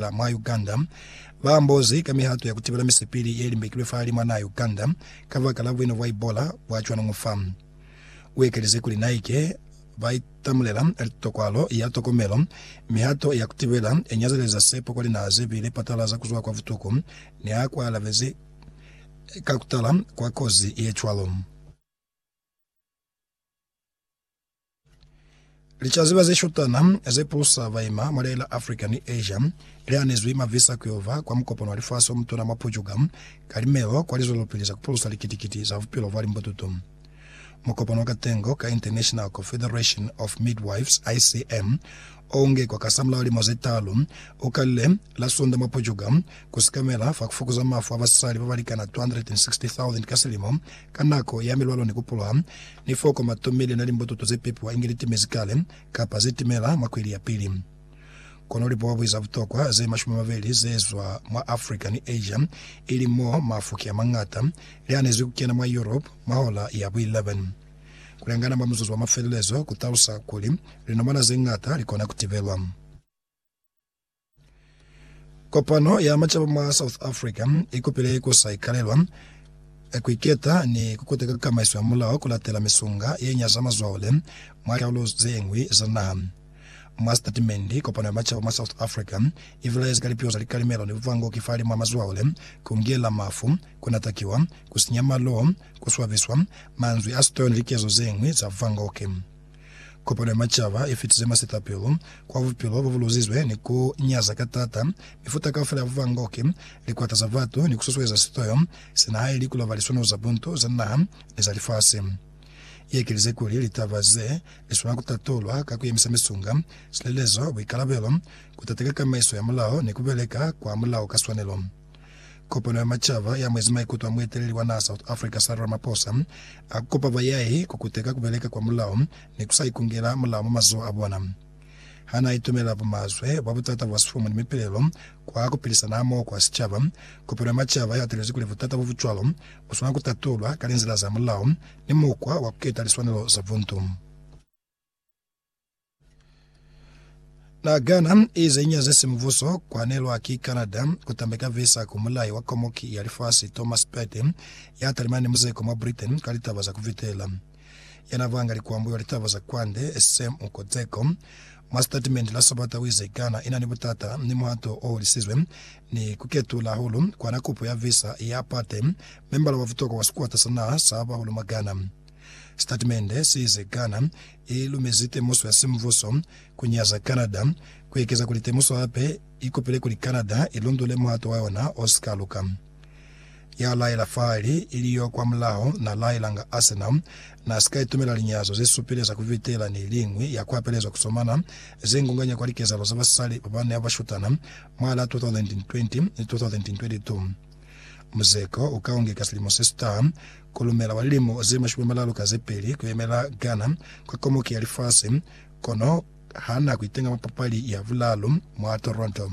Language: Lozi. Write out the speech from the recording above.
Kampala, mwa Uganda, ba ambozi ka mihato ya ku tibela misipili ye limbekilwe fa lima naa Uganda kabaka la buino bwa Ebola bwa cwanuñu fa. U ekelize kuli naike ba itamulela litokwalo ya tokomelo, mihato ya ku tibela i nyazeleza sepo kwa linaha ze bile patalaza ku zwa kwa butuku ni ha ku alabezi ka ku tala kwa kozi ye cwalo. Licaziba ze shutana ze pusa baima mwa Leila Africa ni Asia li anezwi mavisa ku yo ba kwa mukopano wa lifasi o mutuna mwa Pujuga ka Limeo kwa lizwelopili za ku pulusa likiti-kiti za bupilo bwa limbututu. Mukopano wa katengo ka International Confederation of Midwives, ICM, o ungekwa kasamulaho limo ze taalu, u kalile la Sunda mwa Pujuga ku sikamela fa ku fukuza mafu a basali ba ba likana 260,000 ka silimo Ka nako ya milwalo ni ku poloha, ni foko ma tomile na limbototo ze pepiwa inge li timezi kale kapa ze timela mwa kweli ya pili. Kono lipuabwi za butokwa ze mashumi mabeli ze zwa mwa Africa ni Asia, ili mo mafuki a mañata, li anezi ku kena mwa Europe mwa hola ya bu 11. Ku lengana mwa muzuzu wa mafelelezo ku talusa kuli linomana ze ñata li kona ku tibelwa. Kopano ya Macaba mwa South Africa i kupile ku sa ikalelwa, ku iketa ni ku kuteka kamaiso ya mulao ku latela misunga ye nyaza mazwale mwa likarolo ze ñwi za naha. Mwa sitatimende, Kopano ya Macaba mwa South Africa i bilaezi ka lipiho za likalimelo ni buvangoki fahalimw'a mazwale, ku ngela mafu, ku natakiwa, ku sinya maloo, ku swabiswa, manzwi a sitoyo ni likezo ze ñwi za buvangoki. Kopano ya Macaba i fitize masitapelo kwa bupilo bo bu luzizwe ni ku nyaza ka taata mifuta kaufela ya buvangoki, likwata za batu, ni ku susueza sitoyo sina haili ku laba liswaniso za buntu za naha ni za lifasi. I ekelize kuli, Litaba ze li swanela ku tatulwa ka ku yemisa misunga, silelezo, buikalabelo, ku tateka kamaiso ya mulao ni ku beleka kwa mulao ka swanelo. Kopano ya Macaba ya mwezi maikuto a mueteleli wa naha South Africa Cyril Ramaphosa a ku kopa bayahi ku kuteka ku beleka kwa mulao ni ku sa ikungela mulao mwa mazoho a bona. Ha n'a itumela bumazwe bwa butata bwa sifumu ni mipilelo kwa ku pilisana hamoho kwa sicaba, kopano ya Macaba i hatelezi kuli butata bo bu cwalo bu swanela ku tatulwa ka linzila za mulao ni mukwa wa ku keta liswanelo za buntu. Na gana ize nya zesi mubuso kwanelwa ki Canada kutambeka visa ku mulai wa komoki ya lifasi Thomas Pate ya talimana ni muzeko mwa Britain ka litaba za kuvitela. Yana banga likwambo wa litaba za kwande Sam Ukodzeko mwa sitatimende la Sabata wize Ghana inani butata ni muhato oholisizwe ni kuketula hahulu kwana kupo ya visa ya Pate, membala wa butokwa wa sikwata sa naha sa bahulu mwa Ghana. Sitatimende se ize Ghana i lumezi temuso ya simvuso ku nyaza Canada, ku ekeza kuli temuso hape i kopile kuli Canada i lundule muhato wa yona o si ka luka. Ya laela fahali ili yo kwamulaho na laelanga Arsenal na si ka itumela linyazo ze supile za ku vitela ni liñwi ya ku apelezwa ku somana ze ngunganya kwa likezahalo za basali ba ba ne ba shutana mwa la 2020 ni 2022. Muzeko u ka ungeka silimo se sita, kolumela wa lilimo ze mashumi amalalu ka ze peli, kuyemela Ghana kwa komuki ya lifasi, kono hana kuitenga mwa papali ya bulalu mwa Toronto.